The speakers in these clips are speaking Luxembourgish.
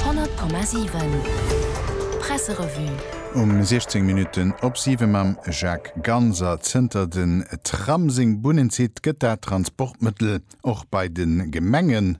100,7 Presserevue. Um 16 Minutten op 7 mam Jacques Ganser. Zënter den Tram seng Bunnen zitt, gëtt dat Transportmëttel och bei de Gemenge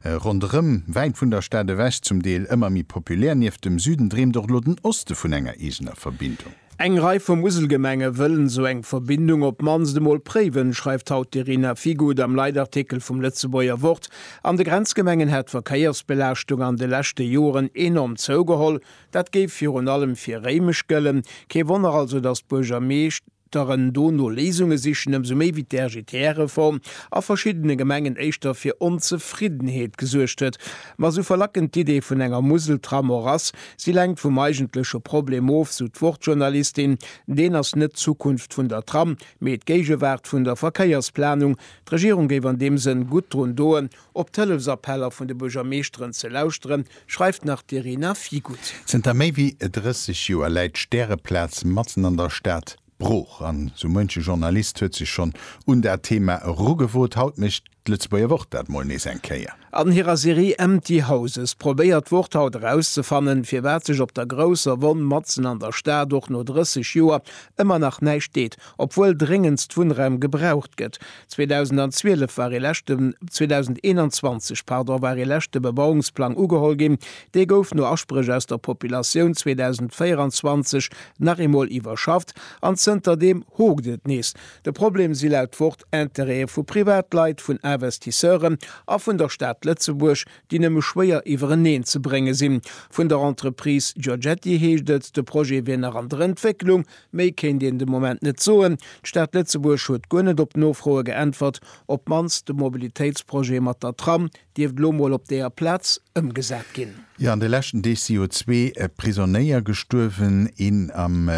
ronderëm, wäit vun der Stad ewech, zum Deel ëmmer méi populär. Nieft dem Süden dreemt och elo den Oste vun enger eegener Verbindung. Eng Rei vu Muselgemenge wëllen esou eng Verbindung op d'mannst emol préiwen, schreift haut d'Irina Figut am Leitartikel vum Lëtzebuerger Wort. An de Grenzgemengen hätt d'Verkéiersbelaaschtung an de leschte Joren enorm zougeholl. Dat géif virun allem fir Réimech gëllen. Kee Wonner also, datt d'Buergermeeschteren do no Léisunge sichen, ëmsou méi wéi d'RGTR-Reform a verschiddene Gemengen éischter fir Onzefriddenheet gesuergt huet. Ma sou verlackend d'Idee vun enger Museltram och ass, si lenkt vum eigentleche Problem of, sou d'Wuertjournalistin. Deen ass net d'Zukunft vun der Tram, mee d'Géigewaart vun der Verkéiersplanung. D'Regierung géif an deem Sënn gutt drun doen, op d'Hëllefsappeller vun de Buergermeeschteren ze lauschteren, schreift nach d'Irina Figutt. Zënter méi wéi 30 Joer läit d'Stäreplaz matzen an der Stad, Brooch an sou muenche Journalist huet sech schonn un dat Thema erugewot. Haut mécht d'Lëtzebuerger Wort dat mol nees eng Kéier. An hirer Serie Empty Houses probéiert d'Wort haut erauszefannen, firwat sech op der grousser Wonn matzen an der Stad och no 30 Joer ëmmer nach näischt deet, obwuel dréngendst Wunnraum gebraucht gëtt. 2012 war ee leschte, 2021, pardon, war ee leschte Bebauungsplang ugeholl ginn. Dee gouf no Aspréch aus der Populatioun 2024 nach eemol iwwerschafft an zënter deem hokt et nees. De Problem si laut Wort Interêtë vu Privatleit, vun Investisseuren a vun der Stad Lëtzebuerg, déi nëmme schwéier iwwereneen ze brénge sinn. Vun der Entreprise Giorgetti heescht et, de Projet wier nach an der Entwécklung. Méi kéint een de Moment net soen. D'Stad Lëtzebuerg huet guer net op Nofroe geäntwert. Op d'mannst de Mobilitéitsprojet mat der Tram dierft elo mol op deeër Plaz ëmgesat ginn. Jo, an de leschten Deeg si jo zwee Prisonéier gestuerwen, een am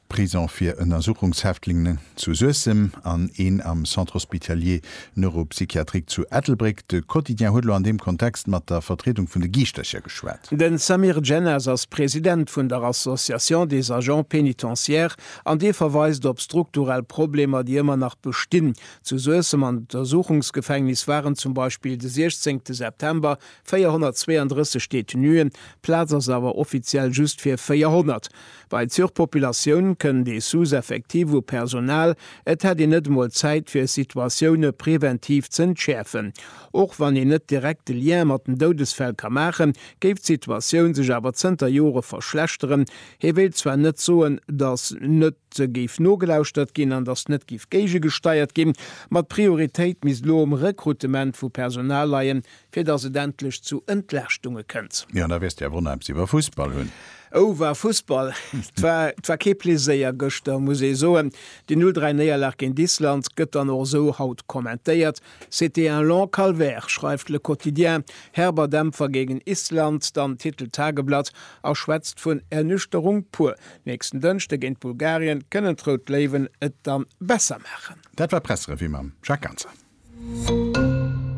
Prisong fir Ënnersuchungshäftlingen zu Suessem an een am Centre hospitalier Neuropsychiatrique zu Ettelbréck. De Quotidien huet elo an deem Kontext mat der Vertriedung vun de Giischtercher geschwat. De Samir Djennas ass President vun der Association des agents pénitentiaires an dee verweist op strukturell Problemer, déi ëmmer nach bestinn. Zu Suessem am Untersuchungsgefängnis waren zum Beispill de 16 September 432 Detenuen, Plaz ass awer offiziell just fir 400. Bei Surpopulatioun kënnt ee Sous-Effectif u Personal, et hätt een net emol Zäit fir Situatioune preventiv z'entschäerfen. Och wann een net direkt de Lien mat den Doudesfäll ka maachen, géif d'Situatioun sech awer zënter Jore verschlechteren. Hie wéilt zwar net soen, datt net géif nogelauschtert ginn an datt net géif géigegesteiert ginn, ma d'Prioritéit misst elo um Rekrutement vu Personal leien, Fir dass et endlech zu Entlaaschtunge kënnt. Jo, da wäers de awer onheems iwwer Fussball hunn. Oh, war Fussball! 't war, 't war kee Pleséier gëschter, muss ee soen. Déi 0, 3 Néierlag géint Island gëtt dann och esou haut kommentéiert, C'était un long calvaire, schreift Le Quotidien, herber Dämpfer géigen Island, dann titelt d'Tageblatt a schwätzt vun Ernüchterung pur. Nächsten Dënschde géint Bulgarien kënnen d'Rout Léiwen et dann besser maachen. Dat war d'Pressrevue mam Jacques Ganser.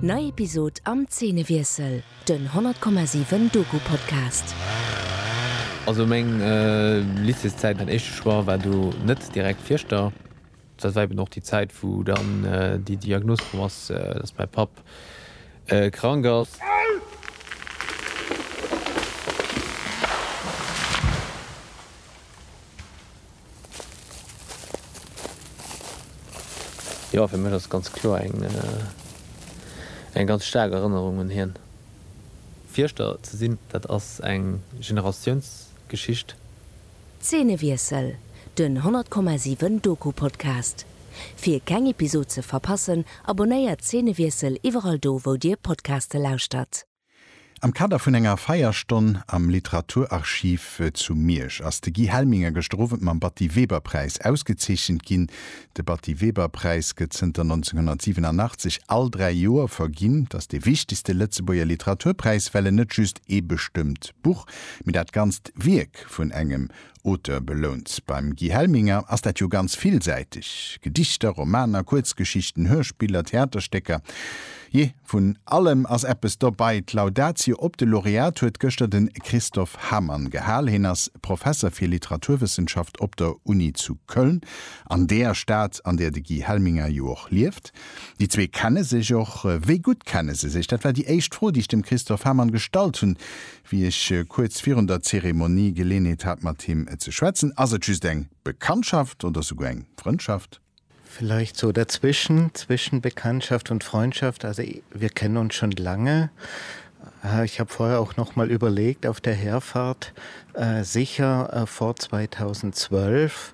Nei Episod am Zeenewiessel, den 100,7 Doku-Podcast. Also meng Lycéeszäit, mäin éischte Choix war do net direkt Fierschter. Dat war eben och déi Zäit, wou dann déi Diagnos komm ass, dass mäi Papp krank ass. Jo, fir mech ass et ganz kloer eng eng ganz staark Erënnerung un hien. Fierschter ze sinn, dat ass eng Generatiounsgeschicht. Zeenewiessel, Den 100,7 Doku-Podcast. Fir keng Episod ze verpassen, abonnéiert Zeenewiessel iwwerall do wou dir Podcaste lauschtert. Am Kader vun enger Feierstonn am Literaturarchiv zu Miersch ass de Guy Helminger gëschter Owend mam Batty-Weber-Präis ausgezeechent ginn. De Batty-Weber-Präis gëtt zënter 1987 all dräi Joer verginn. Et ass dee wichtegste Lëtzebuerger Literaturpräis, well en net just ee bestëmmt Buch, mee dat ganzt Wierk vun engem Auteur belount. Beim Guy Helminger ass dat jo ganz villsäiteg, Gedichter, Romaner, Kuerzgeschichten, Hörspiller, Theaterstécker, jee, vun allem ass eppes dobei. D'Laudatio op de Laureat huet gëschter de Christophe Hamann gehal. Hien ass Professer fir Literaturwëssenschaft op der Uni zu Köln, an deer Stad, an deer de Guy Helminger jo och lieft. Déi zwee kenne sech och. Wéi gutt kenne se sech? Dat war déi éischt Fro, déi ech dem Christophe Hamann gestallt hunn, Wéi ech kuerz virun der Zeremonie Geleenheet hat mat him ze schwätzen, ass et just eng Bekanntschaft oder souguer eng Frëndschaft? Vielleicht so dazwischen, zwischen Bekanntschaft und Freundschaft. Also wir kennen uns schon lange. Ich habe vorher auch noch mal überlegt auf der Herfahrt, sicher vor 2012.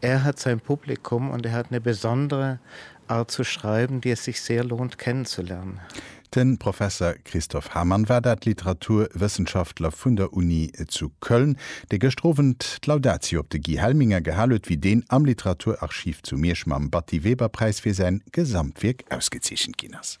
Er hat sein Publikum und er hat ne besondere Art zu schreiben, die es sich sehr lohnt kennenzulernen. De Professer Christoph Hamann war dat, Literaturwëssenschaftler vun der Uni zu Köln, dee gëschter Owend d'Laudatio op de Guy Helminger gehal huet, wéi deen am Literaturarchiv zu Miersch mam Batty-Weber-Präis fir säin Gesamtwierk ausgezeechent ginn ass.